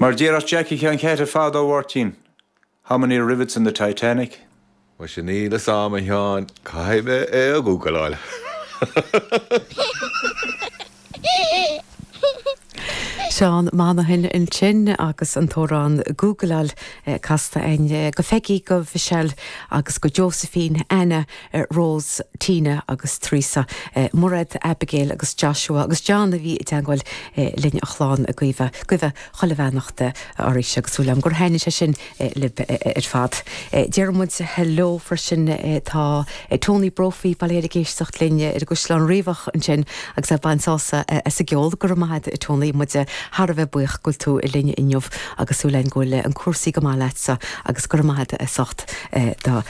Mar déarfadh Jackie Sheáin Cháite fadó, a Mháirtín, How many rivets in the Titanic? Muise níl 'fhios a'am a Sheáin, caithfidh mé é a ghúgaláil. Seán Monaghan ansin agus an t-amhrán Gúgláil casta aige. Go Pheigí, go Mhichelle agus go Josephine, Anna, Rós, Tina agus Theresa, Mairéad, Abigail agus Joshua agus John a bhí i dteangmháil linn an chlann ag guibhe chuile bheannacht arís agus súil agam gur thaitnigh sé sin libh ar fad. Déarfaidh muid heileo freisin tá Tony Brophy, bail ó Dhia air ag éisteacht linn ar an gCaisleán Riabhach ansin agus ag baint sásamh as an gceol, go raibh maith agat a Tony, muid thar a bheith buíoch go bhfuil tú linn inniu agus súil againn go bhfuil cúrsaí go maith leatsa agus go raibh maith agat as ucht do.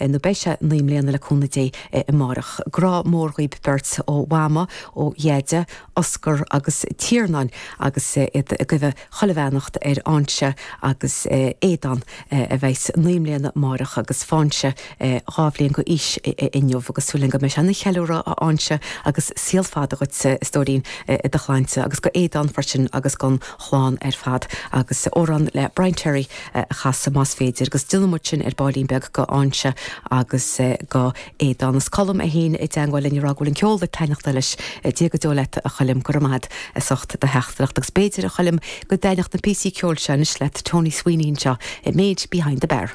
nó beidh sé naoi mbliana le cúnamh Dé amáireach. Grá mór dhaoib beirt ó Mhama, ó Dheaide, Oscar agus Tiarnán agus iad ag guibhe chuile bheannacht ar Fhainche agus Aodán a bheidhs naoi mbliana amáireach agus Fainche dhá bhliain go aois inniu agus súil againn go mbeidh sé ina cheiliúradh a Fhainche agus saol fada agat a stóirín i do shláinte agus go Aodán freisin agus gon chlann ar fad agus amhrán le Brian Terry a chasadh más féidir agus déanfaidh muid sin ar baillín beag go Fhainche agus go Aodán. Is Colm é féin i dteangmháil linn ag rá go bhfuil an ceol ag taitneachtáil leis. Dia go deo leat a Choilm, go raibh maith agat as ucht do theachtaireacht. Agus b'fhéidir, a Choilm, go dtaitneodh na píosaí ceoil seo anois leat, Tony Sweeney anseo The Maid Behind the Bar.